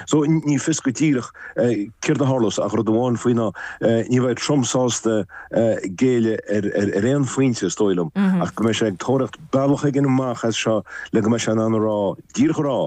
So, ní fios go díreach céard a tharlós, ach rud amháin faoi ná ní bheidh Trump sásta géilleadh ar aon phointe, is dóigh liom, ach go mbeidh sé ag tóraíocht bealach éigin amach as seo le go mbeidh sé in ann a rá, díreach a rá,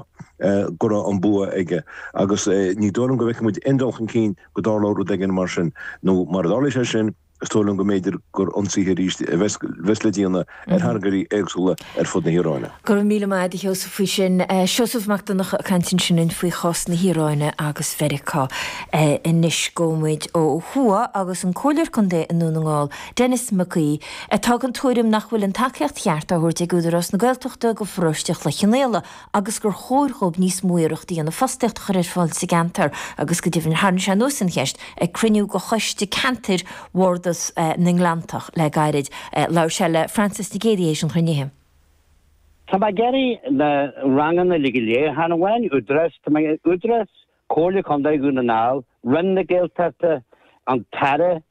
go raibh an bua aige. Agus ní dóigh liom go bhfeicfidh muid aon dul chun cinn go dtarlóidh rud éigin mar sin, nó mura dtarlaí sé sin, Is dóigh liom go mb'fhéidir gur ionsaithe arís a bheas le déanamh ar thargairí éagsúla ar fud na hIaráine. Go raibh míle maith agat a Sheosaimh faoi sin. Seosamh Mac Donnacha ag caint linn ansin faoi chás na hIaráine agus Mheiriceá anois. Gabhfaidh muid ó thuaidh agus an Comhairleoir Contae i nDún na nGall, Denis Mac Aoidh, atá den tuairim nach bhfuil an tacaíocht cheart á thabhairt ag Údarás na Gaeltachta do Pharóiste Chloich Cheann Fhaola, agus gur chóir dhóibh níos mó iarracht a dhéanamh fostaíocht a chur ar fáil sa gceantar agus go deimhin tharraing sé anuas an cheist ag cruinniú de choiste ceantair Bhardas na nGleanntach le gairid. Labhair sé le Frances Nic Géadaigh tar éis an chruinnithe. Tá mé ag iarraidh na ranganna uilig ar leathanach amháin, Údarás, tá mé ag iarraidh Údarás, Comhairle Contae Dhún na nGall, Roinn na Gaeltachta, an tAire,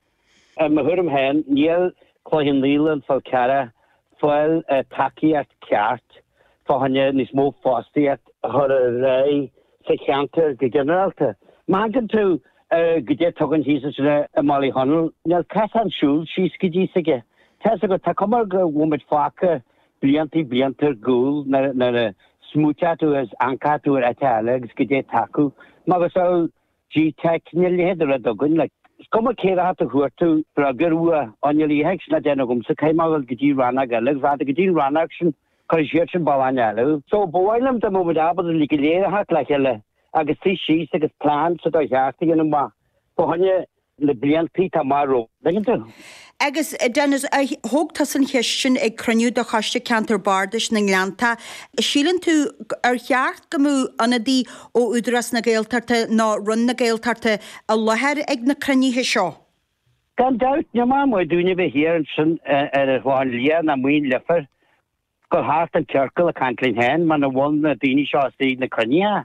I mo thuairim féin, níl Cloich Cheann Fhaola, An Fál Carrach ag fáil tacaíocht ceart fá choinne níos mó fostaíocht a chur ar aghaidh sa cheantar go ginearálta. Má amharcann tú ar caidé atá againn thíos ansin i mBaile Chonaill, níl cosán siúil síos go dtí s'aige. Tá's agat, tá cuma ar go bhfuil muid fágtha blianta blianta ar gcúl nuair a smaoitíonn tú agus amharcann tú ar áit eile agus caidé atá acu. Macasamhail G-Teic, níl a leithéid ar bith againn, like, is cuma cé dhath a fuair tú, bhreá gur fhuath, á níl a dhath ag sin le déanamh agamsa, caithfidh mé dhul go dtí rannóg eile, agus fada go dtí an rannóg sin, cuirfidh siad sin bealach eile thú. So, ba mhaith liom dá mbeadh muid ábalta uilig go léir a theacht le chéile agus suí síos agus plean sa dá theacht a dhéanamh amach, fá choinne na bliantaí atá amach romhainn, an dtuigeann tú? Agus, Denis, thóg tusa an cheist sin ag cruinniú de Choiste Ceantair Bardais na nGleannta, síleann tú, ar cheart go mbeadh ionadaí ó Údarás na Gaeltachta nó Roinn na Gaeltachta i láthair ag na cruinnithe seo? Gan dabht, níl maith ar bith dúinne a bheith thiar ansin ar an Chlochán Liath nó amuigh i Leifear. Gabháil thart i gciorcal ag caint linn féin muna bhfuil na daoine seo ins na cruinnithe.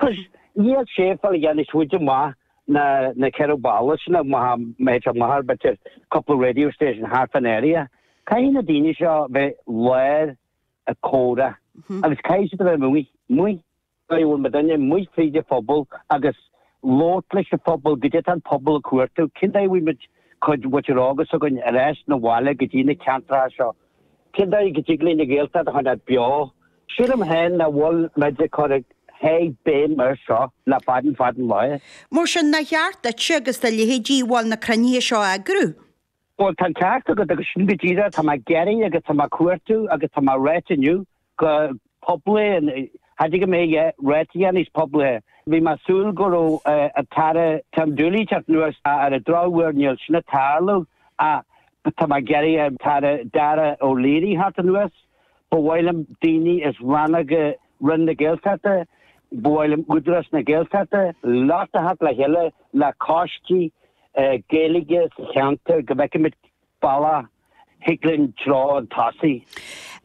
Agus níl sé ag fáil a dhath níos faide amach ná na ceithre bhalla sin ach maybe amach ar b'fhéidir couple of radio stations thart fán area. Caithfidh na daoine seo bheith i láthair ag comhrá agus caithfidh siad a bheith amuigh. Dóigh a bhfuil muidinne amuigh fríd an phobal agus labhairt leis an phobal, caidé atá an pobal ag cuartú, cén dóigh a bhfaighidh muid cuid muintir óg s'againn, ar ais 'na bhaile go dtí na ceantracha seo. Cén dóigh go dtig linn an Ghaeltacht a choinneáil beo. Sílim féin nach bhfuil muid ag cur a sháith béim air seo le fada fada an lá. Mar sin, nár cheart duitse agus do leithéidí bhuel, na cruinnithe seo a eagrú? Bhuel, tá an ceart agat, agus sin go díreach atá mé ag iarraidh agus atá mé ag cuartú agus atá mé a ráit inniu go poiblí, cha dtig mé é a ráit níos poiblí. Bhí mé ag súil go raibh an tAire Tim Dooley ag teacht anuas ar an drochuair níl sin ag tarlú ach tá mé ag iarraidh an tAire Dara Calleary theacht anuas. Ba mhaith liom daoine as rannóga Roinn na Gaeltachta, ba mhaith liom Údarás na Gaeltachta uilig a theacht le chéile le coistí Gaeilge sa cheantar go bhfeicfimid bealach a thig linn treo chun tosaigh.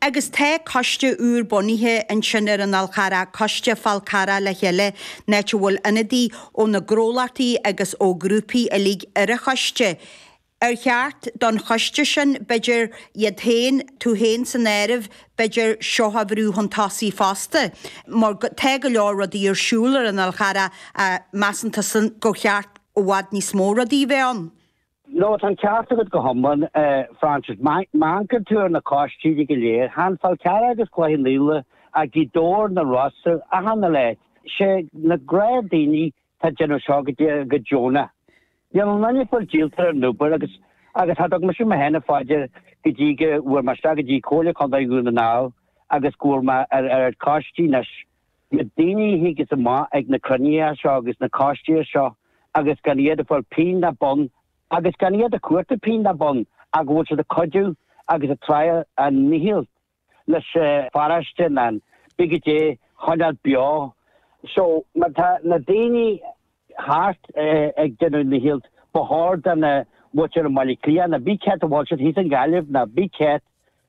Agus tá coiste úr bunaithe ansin ar an Fhál Carrach, Coiste Fál Carrach le chéile, an áit a bhfuil ionadaí ó na gnólachtaí agus ó ghrúpaí uilig ar an choiste. Ar cheart don choiste sin, b'fhéidir, iad féin, tú féin san áireamh, b'fhéidir, seo a bhrú chun tosaigh fosta? Mar tá go leor rudaí ar siúl ar an Fhál Carrach ach measann tusa gur cheart i bhfad níos mó rudaí a bheith ann. Ó tá an ceart agat go hiomlán, a Frances. Má amharcann tú ar na coistí go léir. Tá an Fál Carrach agus Cloich Cheann Fhaola, Gaoth Dobhair, na Rosa, achan áit. 'Sé na gnáthdaoine Atá ag déanamh seo go dtí go deonach. Níl aon duine ag fáil díolta ar an obair agus agus cha dtug mise mé féin fá dear go dtí go bhfuair mé isteach go dtí Comhairle Contae Dhún na nGall agus go bhfuair mé ar ar coistí anois na daoine a thigeas amach ag na cruinnithe seo agus na coistí seo agus gan iad ag fáil pingin ná bonn agus gan iad ag cuartú pingin ná bonn ach go bhfuil siad ag cuidiú agus ag tryáil a ndícheall leis an pharóiste nó cibé caidé a choinneáil beo. So, má tá na daoine thart ag déanamh a ndícheall, ba chóir don mhuintir i mBaile Átha Cliath, nó cibé cá háit a bhfuil siad thíos i nGaillimh, nó cibé cá háit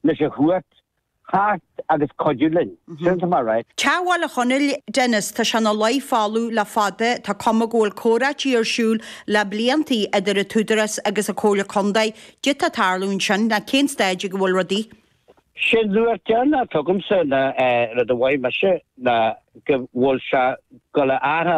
leis a thabhairt thart agus cuidiú linn. Sin atá mé a ráit. Teach Bhaile Chonaill, Dennis, tá sé ina luí folamh le fada. Tá cuma go bhfuil comhráití ar siúl le blianta idir an tÚdarás agus an Chomhairle Contae. Caidé atá ag tarlú ansin, nó cén stáid ag a bhfuil rudaí. Sé'n luach deireanach a thuigimse ná rud a mhothaigh mise ná go bhfuil sé ag gabháil a athrú